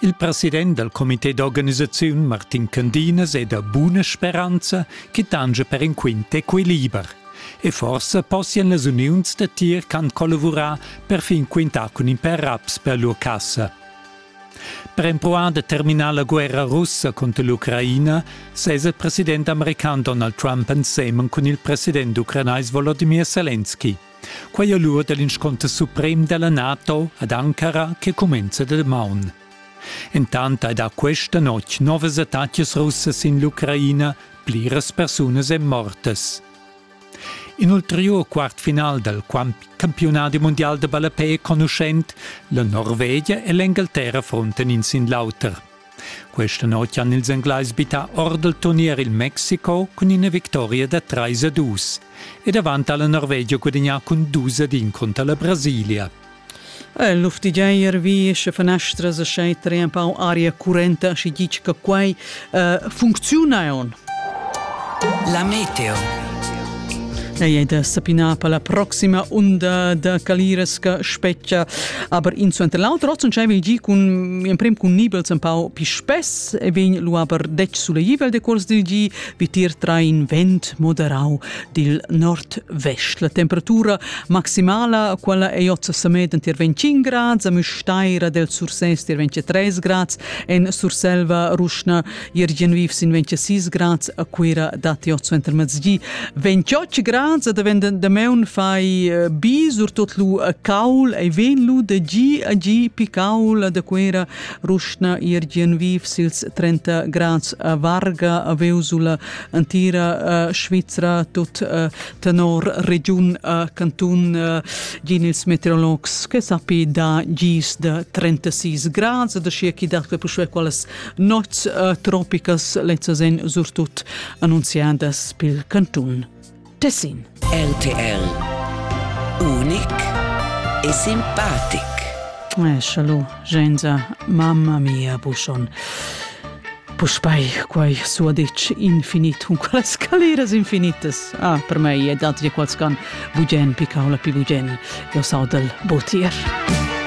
Il president dal comité d'organisaziun Martin Candinas è da buna speranza che tangia per in quint equiliber. E forsa possian las uniuns da tir ch'han collavurà per fin quintar cun in per raps per lur cassa. Per empruar da terminar la guerra russa contro l'Ucraina sesa il president american Donald Trump ensemen cun il president ucranais Volodymyr Zelensky. Quai è l'ur da l'insconter suprem da la NATO ad Ankara che cumenza da damaun. Entant hai dà questa notg novas attacas russas in l'Ucraina, pliras persunas èn mortas. In ulteriur quartfinal dal campionadi mondial da ballapè è conuschent, la Norvegia e l'Engalterra frontan in sin l'auter. Questa notg han ils Englais bittà or dal turnier il Mexico cun ina victoria da 3 a 2 ed avant ha la Norvegia gudagnà cun 2 ad 1 cunter la Brasilia. Il luftigiair vi sche fanestras e schai tre empau aria currenta, schi ditg che quai uh, funcziuna on La meteo. Ei ei da sapinar per la proxima unda da caliras che spetga. Aber in suenter l'auter ozzon schei veggi cun emprem cun nibels empau pi spess e vegn lu aber detg suleivel de cuors dil gi vitir tra in vent moderau dil nord-vest. La temperatura maximala quella ei ozza samed tier 25 grad, a Müstaira del Sursès tier 23 grad, en Surselva ruschna Jürgen viv sin 26 grads a Cuira datti otso entermezdi. 28 grads da venden da meun fai eh, bi, surtot lu a caul, ei ven lu de gi a gi picaul da Cuira, ruschna Jürgen viv sils 30 grads a Varga, a Veusula, antira uh, Svizzera, tut uh, tenor regiun uh, cantun uh, gin ils meteorologs che sappi da gis de 36 grads, da scia chi dat per quelles Nots uh, tropicas lezzas en surtut annunziadas pil cantun. Tessin. RTL. Unic e simpatic. Eh, Schalu, Genza, mamma mia Buschon. Puspei quai suaditsch infinit, un qualas scaleras infinitas. Ah, per me è dat di quals can bugen picau la pi bugen. Jo sau del botier.